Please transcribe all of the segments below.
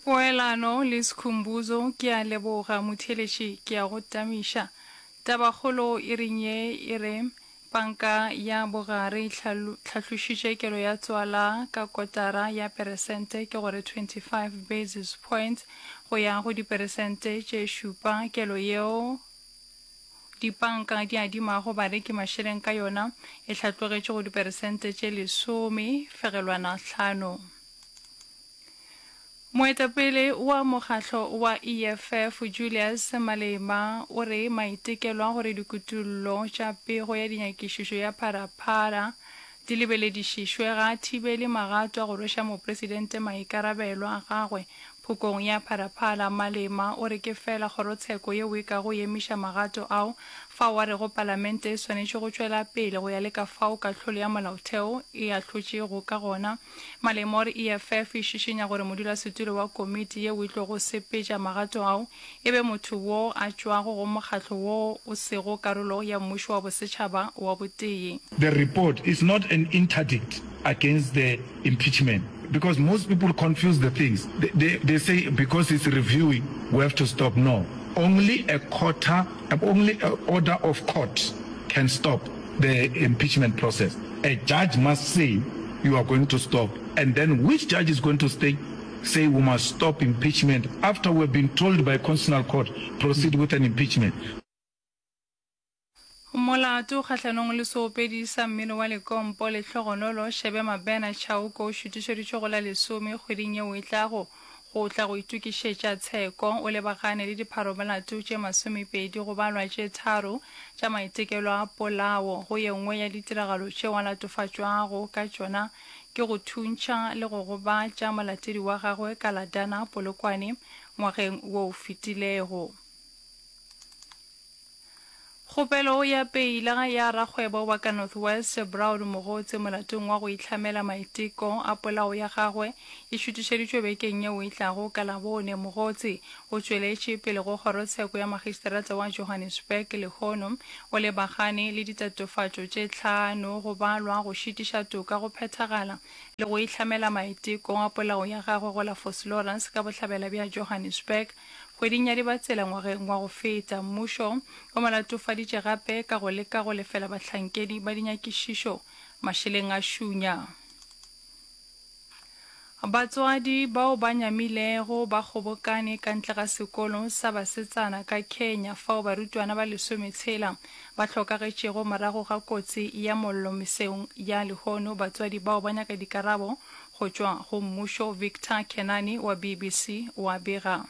Poelano le Sikhumbuzo, Ke a leboga motheeletši, ke a go tamiša. Tabakgolo e reng ye e re, Panka ya Bogare e tlhahlošitše kelo ya tswala ka kotara ya peresente, ke go re 25 basis points, go ya go diperesente tše šupa. Kelo yeo. Dipanka di adimago bareki mašeleng ka yona e hlatlogetše go diperesente tše lesome fegelwana hlano. Moetapele wa mokgahlo wa EFF Julius Malema o re maitekelo a gore dikutullo tša pego ya dinyakišišo ya Phara-Phara di lebeledišišwe ga a thibele magato a go rweša mopresidente maikarabelo a gagwe Phokong ya Phalaphala, Malema o re ke fela kgorotsheko yeo e ka go emiša magato ao, fao a rego Palamente e swanetše go tšwela pele go ya le ka fao kahlolo ya Molaotheo e ahlotšego ka gona. Malema o re EFF e šišinya gore modulasetulo wa komiti yeo e tlogo sepetša magato ao e be motho wo a tšwago go mokgatlo wo o sego karolo ya Mmušo wa Bosetšhaba wa Botee. The report is not an interdict against the impeachment because most people confuse the things they they say because it's reviewing we have to stop no only a courta only a order of court can stop the impeachment process a judge must say you are going to stop and then which judge is going to stay Say we must stop impeachment after we have been told by constitutional court proceed with an impeachment. Molato kgahlanong le seopedi sa mmino wa lekompo le hlogonolo Shebe Mabena Chauke o šutišeditšwe go la lesome kgweding yeo e tlago go tla go itokišetša tsheko. O lebagane le dipharomolato tše masomepedi go balwa tše tharo tša maitekelo a polao go ye nngwe ya ditiragalo tšeo a latofatšwago ka tšona ke go thuntšha le go gobatša molatedi wa gagwe ka la Dana Polokwane ngwageng wo o fetilego. Kgopelo ya peila ya rakgwebo wa ka North West Brown Mogotse molatong wa go itlhamela maiteko a polao ya gagwe e šutišeditšwe bekeng yeo e tlago ka Labone. Mogotse O tšweletše pele go Kgorotsheko ya Magistrata wa Johannesburg lehono o lebagane le ditatofatšo tše tlhano go balwa go šitiša toka go phethagala le go ihlamela maiteko a polao ya gagwe go la Vosloorus ka bohlabela bja Johannesburg kgweding ya Dibatsela ngwageng wa go feta. Mmušo o mo latofaditše gape ka go leka go lefela bahlankedi ba dinyakišišo mašeleng a šunya. Batswadi bao ba nyamilego ba kgobokane ka ntle ga sekolo sa basetsana ka Kenya fao barutwana ba lesome tshela ba hlokagetšego morago ga kotsi ya mollo meseong ya lehono. Batswadi bao ba nyaka dikarabo go tšwa go mmušo. Victor Kenani wa BBC wa bega.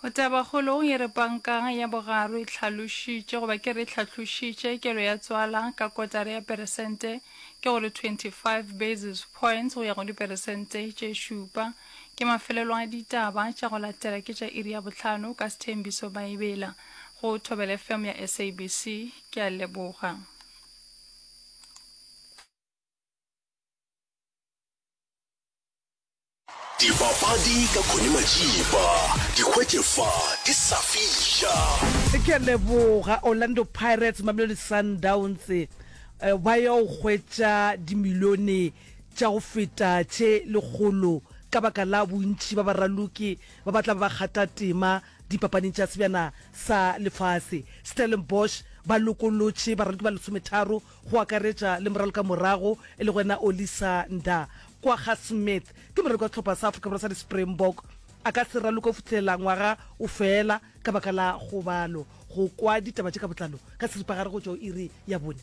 Go tabakgolo ye re pankang ya bogaro e hlalošitše, goba ke re e hlahlošitše, kelo ya tswala ka kotara ya peresente, ke go re 25 basis points go ya go diperesente tše šupa. Ke mafelelo a ditaba tša go latela ke tša iri ya bohlano ka Sthembiso Bhaibela go Thobela FM ya SABC. Ke a leboga. Dipapadi ka Connie Majiba, di hwetše fa di sa fiša. Ke a leboga Orlando Pirates, Mamelodi Sundowns ba ya go hwetša dimilione tša go feta tše lekgolo ka baka la bontši ba baraloki ba ba tla ba ba kgatha tema dipapading tša Sebjana sa Lefase. Stellenbosch ba lokolotše baraloki ba lesometharo go akaretša le moralokamorago e lego ena Olisa Nda Kwagga Smith, ke moraloki wa sehlopha sa Afrika Borwa sa di-Springbok. A ka se raloke go fihlelela ngwaga o fela ka baka la kgobalo. Go kwa ditaba tše ka botlalo ka seripagare go tšwa go iri ya bone.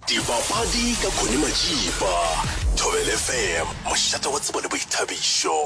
Dibapadi ka Connie Majiba, Thobela FM, mošate wa tsebo le boithabišo.